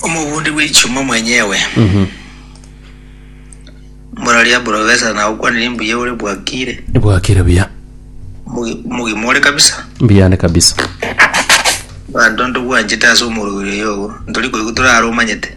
Omobundi bw'echuma mwenyewe, Mororia Profesa na okwanire mbuya ore bwakire. Bwakire buya. Mugi- Mugima ore kabisa. Mbuya ande kabisa. Banto ntogwanchete ase omorwiri oyo ogo. Ntori koigwa torare omanyete.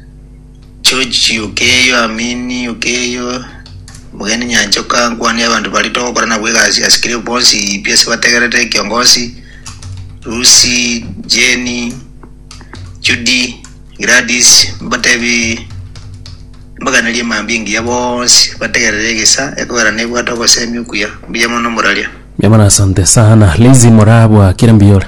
George yokeyo Amini yokeyo Mugeni Nyanchoka nkwane abantu bari togokora nabo egasi ase kire bonsi pi ase bategerete kiongozi Lucy Jenny Judy Gladys mbatebi mbaganerie mambia engiya bonsi bategerere egesa ekogera nebwate ogosemi okuya mbuya mono moraria Mbuya mono asante sana. Lizi morabwakire mbuya ore.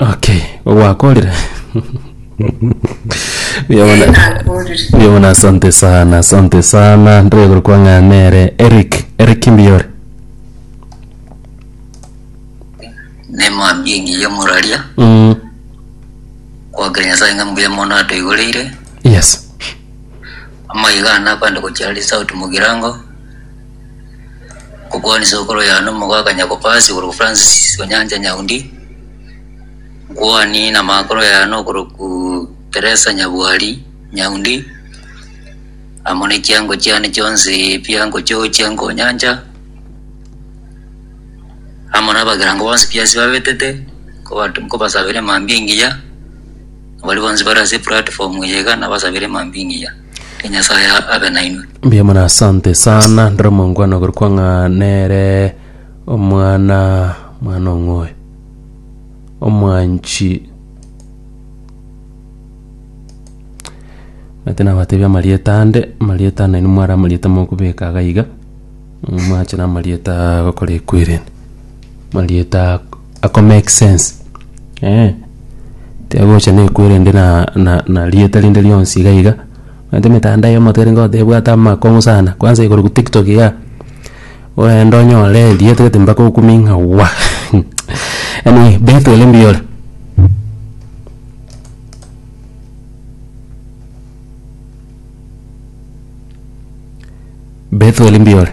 Okay, ogwakorire Buya bono- nakorire buya bono asante sana asante sana ndreguru kwang'anere eric eric mbiyore nemwambie ngiya moraria mm. kwagera nyasaye ng'a mbuya mono atoigoreire yes amaiga ana abande gochia ari sauti mogirango Ngokwania sokoro yane omogoka Nyakopasi okorokwa Francis Onyancha Nyaundi, nkwanie namakoro yane okorokwa Teresa Nyabwari Nyaundi, amo nechiango chiane chionsi pi angochochia nkonyancha, amo nabakerango bonsi pi ase babetete nkoba- nkobasabera emambia engiya, baria bonsi bare ase eplatform eye iga nabasabere emambia engiya. Ee, Nyasae a- abe nainwe. Mbuya mono asante sana ndore omongwana ogorokwa ng'a nere omwana mwana ong'oe omwanchi ati nabatebi amarieta ande amarieta ande nainwe mware amarieta mokobeka iga iga mwache namarieta agokora ekwereni amarieta Ako make sense eh, tiagocha nekwerende na na na rieta rinde rionsi iga iga. Omanyete emetandao eye omoto erenge otebwate amakong'u sana, kwanza igoro ku tiktok igaa, orende onyore erieta gete mpaka okumie ng'a wah anyway bento ere mbuya ore. Bento ere mbuya ore.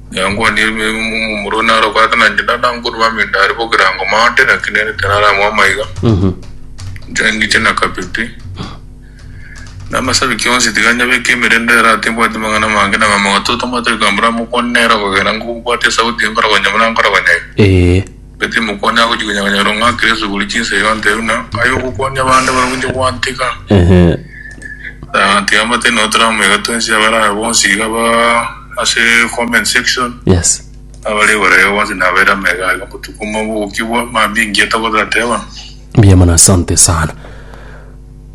Yangwanire ebibe bimo momurue naro ogwate na inche tata nkorua amenda aria bogirango maate naki nere tararamue amaiga inche ngiche na kabete na amasabi kionsi tiga nyabeke emerende ere ati mbwati amang'ana amange na mama gototomate goika mbura mokwane nere okogera ngobwati esauti enkorogonyia buna nkorogonyia iga ee Gati timokwane agochia konyaganya rong'o akire ase kobori chinsa iga nte buna aye ogokwania bande barabwo inche gwantika. Ehe. Ah, tiga mbate nao turamu iga twensi abare aya bonsi iga ba ase comment section Yes. abare igoro iga bonsi nabaire amo iga iga botuko omo bogokigwa mambia engiya togotateba. Mbuya mono asante sana.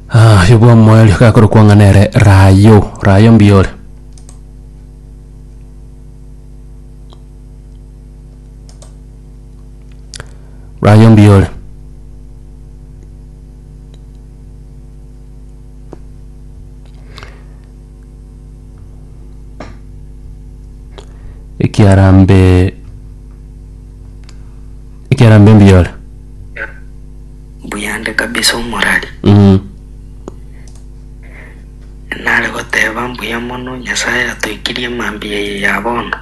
Ah, oyo bwa moerio gakorokwa ng'a nere Rayo. Rayo mbuya ore? Rwayo mbuya ore. Ekiarambe ekiarambe mbuya ore. Mbuyande kabisa omorari. Mm. Nare goteba, Mbuya mono, Nyasae atoikirie mambia eye ya bono.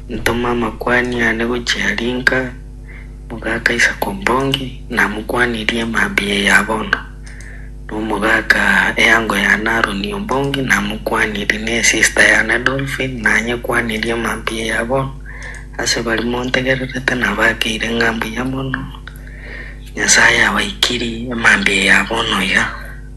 Ntoma amakuani ane gochia aria inka, omogaka Isaac Ombongi, namokwanirie mambia eye ya bono. Na omogaka eango yane Aaron Ombongi namokwanirie, na esista yane Dolphine nanyekwanirie mambia eye ya bono. Ase baria montegererete nabakeire ng'a mbuya mono, Nyasae abaikirie mambia eye ya bono iga.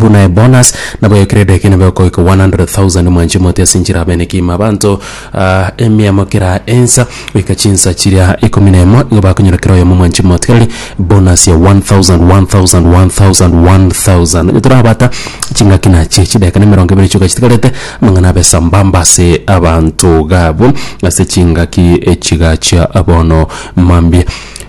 buna ebonus nabo ya credit kina bekoika 100,000 mwanche mote ase nchira bene kima abanto ah, emiamo kera ensa goika chinsa chiria ikomi na emo igo bakonyora kera oyomo mwanche mote kerari bonus ya 1000 1000 1000 1000 onye torabata chingaki nachie chideka na emerongo ebere chioka chitigarete amang'ana abe sambamba ase abanto gabo ase chingaki echiga chia abono mambia